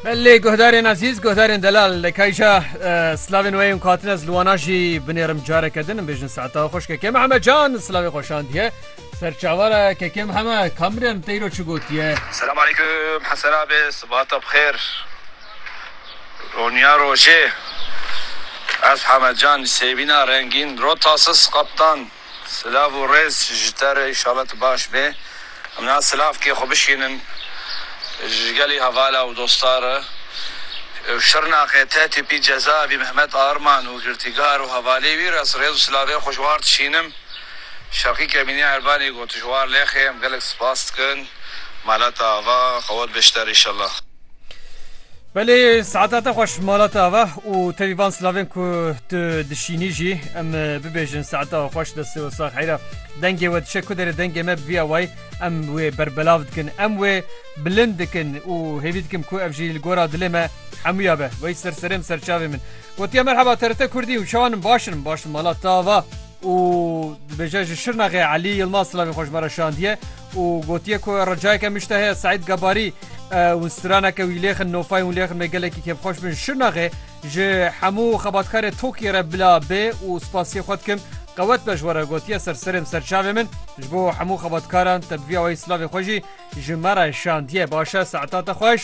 Belê guhdarên ezîz, guhdarên delal li kayja slavên weyên ku hatine ez li wana jî binêrim careke din bêjin saeta xweş kekê Mihemed Can slavê xweşandiye. Serçavara kekê Mihemed Kamrem teyro çi gotiye. Selam aleykum Hesena be sibata bixêr Roniya rojê Ez Hemed Can li sêvîna rengîn Rotasis Kaptan Silav û rêz ji te re înşallah tu baş bê. Em niha silavkê xwe bişînin ji gelî hevala û dosta re. Ew Şirnexê te tîpî cezaevî Mehmet Arman û girtîgar û hevalî wî re ez rêz û silavê xwe ji war dişînim. Şerqî Kemînî Erbanî got ji war lêxê em gelek spas dikin. Malata ava qewet be ji te re înşallah. Belê saeta te xweş mala te ava û tevî van silavên ku tu dişînî jî em bibêjin saeta xweş destê we sax heyra dengê we dişe ku derê dengê me bivîya wayî em wê berbelav dikin em wê bilind dikin û hêvî dikim ku ev jî li gora dilê me hemûya be wey ser serê min serçavê min gotiye merheba terite kurdî û çawanin başin başin mala te ava û dibêje ji şirnaxê Elî Yilmaz silavê xweş me re şandiye û gotiye ku ricayeke min ji te heye Seîd Gebarî û straneke wî lêxin nofayên wî lêxin me gelekî kêfxweş bin ji Şirnaxê ji hemû xebatkarê tokê re bila bê û spasiyê xwe dikim qewet be ji we re gotiye ser serêm ser çavê min ji bo hemû xebatkaran te bi vî awayî silavê xwe jî ji me re şandiye baş e saeta te xweş.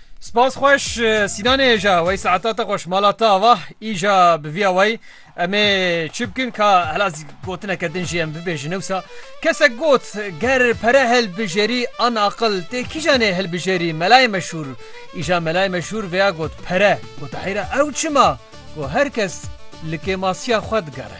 Spas xweş Sînanê hêja wey saeta te xweş mala te ava îja bi vîya wey em ê çi bikin ka hela gotineke din jî em bibêjin ewsa kesek got ger pere hilbijêrî an aqil tê kîjan ê hilbijêrî melayê meşhûr îja melayê meşhûr vêya got pere gote heyra ew çima got her kes li kêmasiya xwe digere.